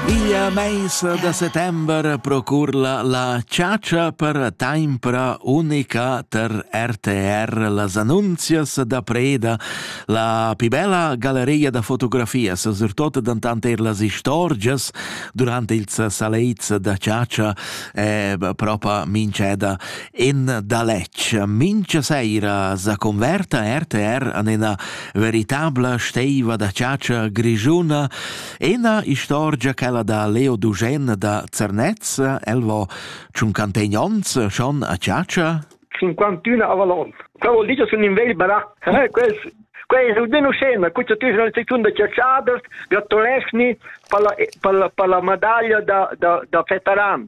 Igl meis da settember procurla la chatscha per taimpra unica ter RTR las annunzias da preda, la pi bella galeria da fotografias, surtot dantant er las istorgias durante ils saleits da chatscha e propa minceda. in daletg. Mincha seira sa converta RTR an ena veritabla steiva da chatscha grigiuna, ena istorgia quella da Leo Dugen da Zernez, el vo tschuncantegn ons schon a chatscha? 51 a Valon. Quel vuol dire sun in vegl barà. Eh, quels Quei è almeno scena, questa tu sono seconda ciaciadas, gratulesni per la, per la, per la medaglia da, da, da Fetaran.